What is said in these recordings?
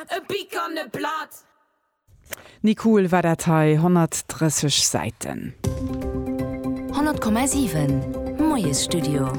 e Bic an e Blatt. Ni cool war dat hei, 130 Säiten. 100,7 Moiesstudio.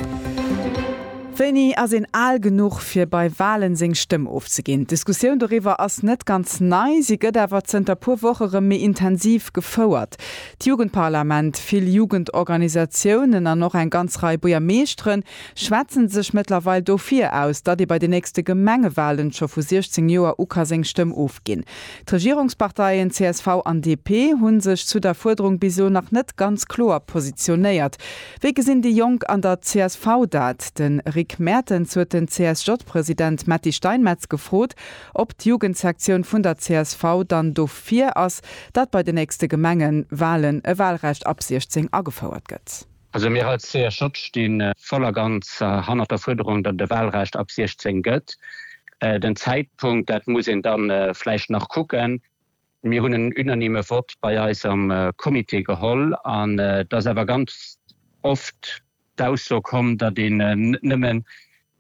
Wéini ass een al genuch fir bei Walen seng Stëmm ofzeginn? D'Diskussioun doriwwer ass net ganz nei, si gëtt awer zënter puer Woch erëm méi intensiv gefouert. D'Jugendparlament, vill Jugendorganisatiounen an och eng ganz Rei Buergermeeschteren schwätzen sech mëttlerweil dofir aus, datt ee bei de nächste Gemengewahlen scho vu 16 Joer u ka seng Stëmm ofginn. D'Regierungsparteien csv an DP hu sech zu der Fuerderung bis elo nach net ganz kloer positionéiert. Wéi gesinn déi Jonk an der csv dat? De Rick Mertens huet den CSJ-President Metty Steinmetz gefrot, ob d'Jugendsektioun vun der csv dann dofir ass, datt bei de nächste Gemengewahlen e Wahlrecht ab 16 agefouert gëtt. Also mir als CSJ sti voll a ganz hannert der Fuerderung, datt et e Wahlrecht ab 16 gëtt. Den Zäitpunkt, dat muss een da vläicht nach kucken. Mir hunn en unanime Vott bei eis am Comité geholl an et ass awer ganz oft d'Ausso komm, datt een net nëmmen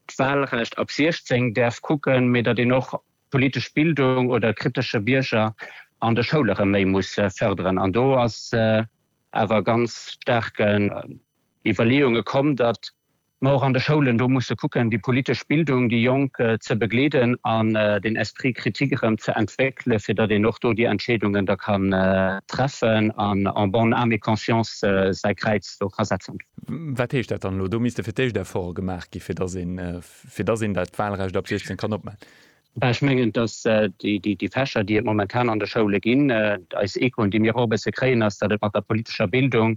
d'Wahlrecht ab 16 däerf kucken, mee datt een och d'politesch Bildung oder kritesche Bierger an de Schoule rëm méi muss fërderen. An do ass awer ganz staarken Iwwerleeunge komm, datt mer och an de Schoulen do musse kucken, déi politesch Bildung, déi Jonk ze begleeden an den Esprit critique erëm ze entwéckelen, fir datt een och do déi Entscheedungen da kann treffen an en bonne âme et conscience säi Kräiz do ka setzen. Wat heescht dat dann elo? Do misste fir d'éischt Efforte gemaach gi fir datt een dat Wahlrecht ab 16 kann opmachen. Ech mengen, datt déi Fächer, déi et momentan an de Schoule ginn, eis Echoen, déi mir och e bësse kréien, ass, datt et mat der politescher Bildung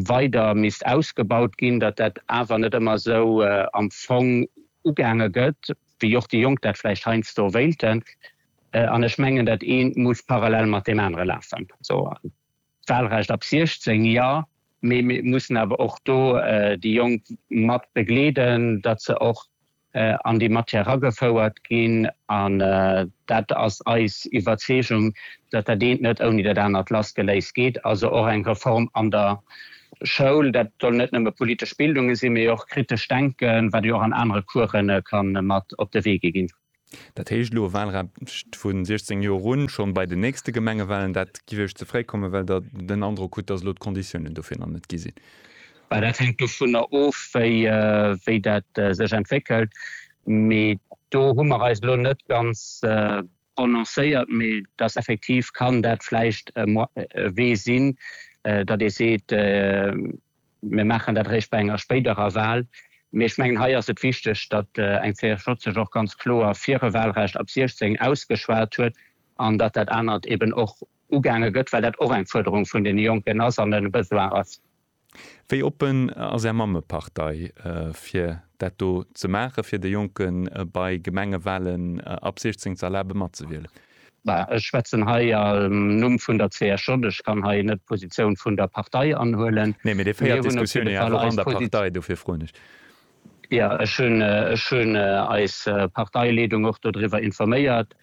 weider misst ausgebaut ginn, datt dat awer net ëmmer esou am Fong ugaange gëtt, wéi och déi Jonk dat vläicht heiansdo wéilten. An ech mengen, datt eent muss parallel mat deem anere lafen. D'Wahlrecht ab 16, jo, mee mir mussen awer och do déi Jonk mat begleeden, datt se och an déi Matière eragefouert ginn. An dat ass eis Iwwerzeegung, datt dat eent net ouni dat anert lassgeléist geet. Also och eng Reform an der Schoul, dat soll net nëmme politesch Bildunge sinn, mee och kritescht Denken, wat jo och an anere Coursen ka mat op de Wee gi ginn. Dat heescht elo e Wahlrecht vu 16 Joer un, schonn bei den nächste Gemengewahlen. Dat géif Iech ze fréi kommen, well Der den Androck hutt, datt elo d'Konditiounen dofir nach net gi sinn? Well dat hänkt dovunner of, wéi dat sech entwéckelt. Mee do hu mer eis elo net ganz prononcéiert. Mee datt effektiv kann dat vläicht e Wee sinn, datt ee seet, Mir maachen dat eréischt bei enger spéiderer Wahl. Mee ech mengen, hei ass et wichteg, datt eng CSJ sech och ganz kloer fir e Wahlrecht ab 16 ausgeschwat huet an datt dat anert eben och ugaange gëtt, well dat och eng Fuerderung vun deene Jonken ass an e Besoin ass. Wéi oppen ass Är Mammepartei, fir dat do ze maachen, fir de Jonken bei Gemengewahlen ab 16 ze erlabe matzewielen? Ech schwätzen hei am Numm vun der CSJ. Ech kann hei net d'Positioun vun der Partei anhuelen. Nee, mee Dir féiert d'Diskussioun jo awer och an der Partei, dofir froen ech. Jo, ech hunn eis Parteileedung och dodriwwer informéiert,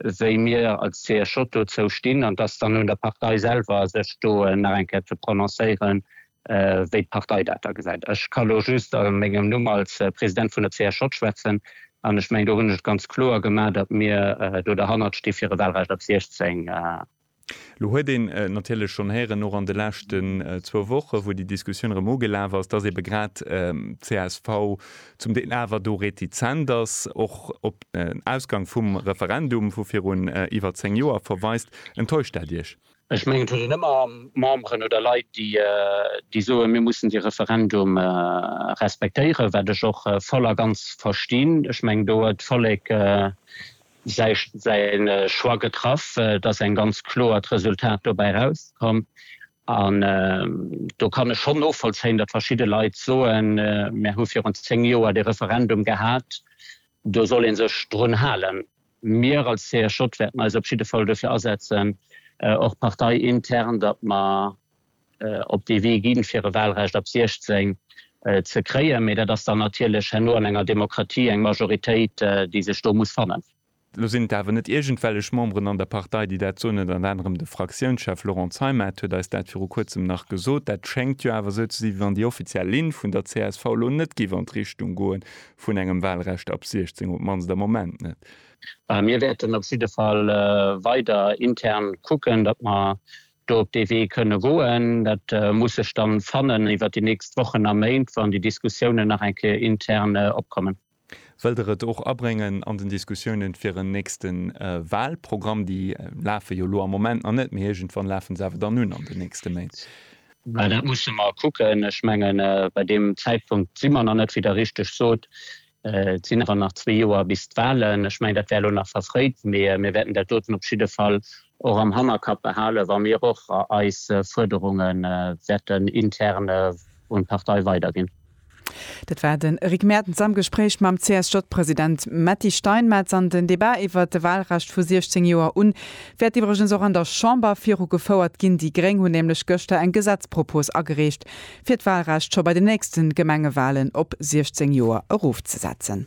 wéi mir als CSJ dozou stinn. An et ass dann un der Partei selwer, sech do nach eng Kéier ze prononcéieren, wéi d'Partei dat da gesäit. Ech ka elo just a mengem Numm als President vun der CSJ schwätzen an ech mengen, do hunn ech et ganz kloer gemaach, datt mir do derhannert sti fir e Wahlrecht ab 16. Elo huet een natierlech schonn héieren, och an de leschten zwou Wochen, wou déi Diskussioun erëm ugelaf ass, datt eebe grad d'CSV zum Deel awer do retizent ass, och op den Ausgang vum Referendum, vu virun iwwer zéng Joer verweist. Enttäuscht dat Iech? Ech mengen, et huet een ëmmer Memberen oder Leit, déi soen, mir mussen dee Referendum respektéieren, wat ech och voll a ganz verstinn. Ech mengen, do huet d'Vollek säi Choix getraff. Et ass eng ganz kloert Resultat dobäi erauskomm. An do kann ech schonn novollzéien, datt verschidde Leit soen, mir hu virun zéng Joer dee Referendum gehat, do soll ee sech drun halen. Mir als CSJ wäerten eis op jidde Fall duerfir asetzen, och parteiintern, datt mer op dee Wee ginn, fir e Wahlrecht ab 16 ze kréien. Mee dat ass dann natierlech herno an enger Demokratie eng Majoritéit, déi sech do muss fannen. Elo sinn et awer net iergendwellech Memberen an der Partei, déi dat soen. Ënnert anerem de Fraktiounschef Laurent Zeimet huet eis dat viru Kuerzem nach gesot. Dat schéngt jo awer esou ze si, wéi wann déi offiziell Linn vun der csv elo net géif an d'Richtung goen, vun engem Wahlrecht ab 16, op d'mannst am Moment net. Mir wäerten op jidde Fall weider intern kucken, datt mer do op dee Wee kënne goen. Dat muss sech da fannen iwwert déi nächst Wochen a Méint, wann déi Diskussiounen nach eng Kéier intern opkommen. Wëllt Der et och abréngen an den Diskussiounen fir en nächste Wahlprogramm? Déi lafe jo elo am Moment nach net, mee iergendwann lafe se awer dann un an den nächste Méint. Mä dat musse mer kucken. Ech mengen, bei deem Zäitpunkt si mer nach net, wéi Der richteg sot. Et sinn awer nach zwee Joer bis d'Wahlen. Ech mengen, dat wär elo nach verfréit, mä mir wäerten dat doten op jidde Fall och am Hannerkapp behalen, wa mir och eis Fuerderunge wäerten intern un d'Partei weiderginn. Dat war den Eric Mertens am Gespréich mam CSJ-President Metty Steinmetz. An den Debat iwwert de Wahlrecht vu 16 Joer un wäert iwwregens och an der Chamber viru gefouert ginn. Déi Gréng hunn nämlech gëschter eng Gesetzpropos agereecht, fir d'Wahlrecht scho bei den nächsten Gemengewahlen op 16 Joer erofzesetzen.